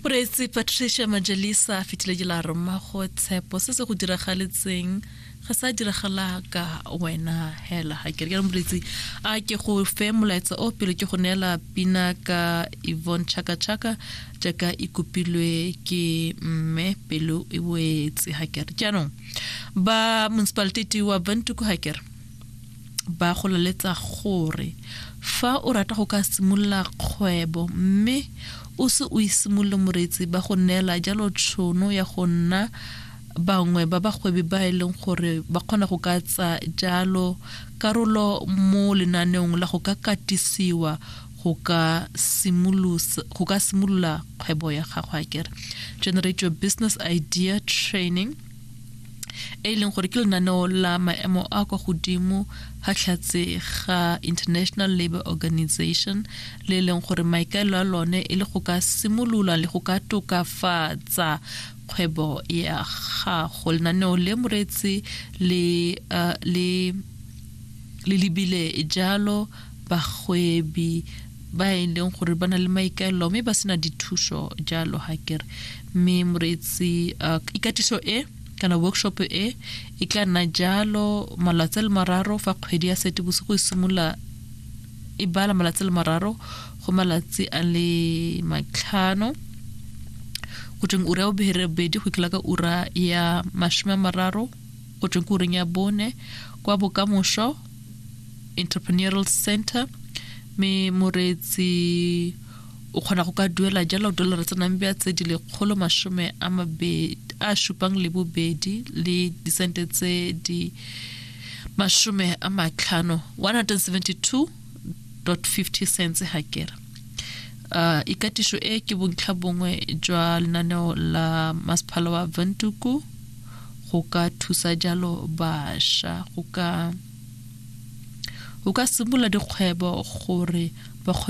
moreetsi patricia majalisa a fitlhile ke la roma go tshepo se se go diragaletseng ga sa diragala ka wena hela ga ke re ka moreetsi a ke go fe molaetsa o pele ke go neela pina ka ivon chaka chaka jaaka e kopilwe ke mme pelo e boetse ga ke re jaanong ba municipaliteti wa bantuku ga ke re ba go laletsa gore fa o rata go ka simolola kgwebo mme o se o isimolole moreetsi ba go neela jalo tshono ya go nna bangwe ba bagwebi ba e leng gore ba kgona go ka tsa jalo karolo mo lenaneong la go ka katisiwa go ka simolola kgwebo ya gago a kere generate your business idea training e e leng gore ke lenaneo la maemo a kwa godimo ga tlhatse ga international labor organization le e leng gore maikaelo a lone e le go ka simolola le go ka tokafatsa kgwebo ya gago lenaneo le moreetsi le uh, le le lebile jalo bagwebi ba e leng gore ba na le maikaelelo mme ba sena dithuso jalo ga kere mme moreetsi uh, ikatiso e kana workshop e e tla nna jalo malatsi le mararo fa kgwedi ya sete bosigo e simolola e bala malatsi le mararo go malatsi a le matlhano go tsweng ura ya bobere bedi go ikela ka ura ya masome a mararo go tsweng ke ureng ya bone kwa bokamoso entrepreneurial center mme moreetsi o kgona go ka duela jalo dollar tsa nambia tse di lekgolo masome a mabedi a supang le bobedi le disente tse di masome a matlhano 172.50 cents ha kera uh, ikatiso e ke bontlha bongwe jwa lenaneo la masephala wa ventuku go ka thusa jalo bašwa go ka simolola dikgwebo gore ba kgone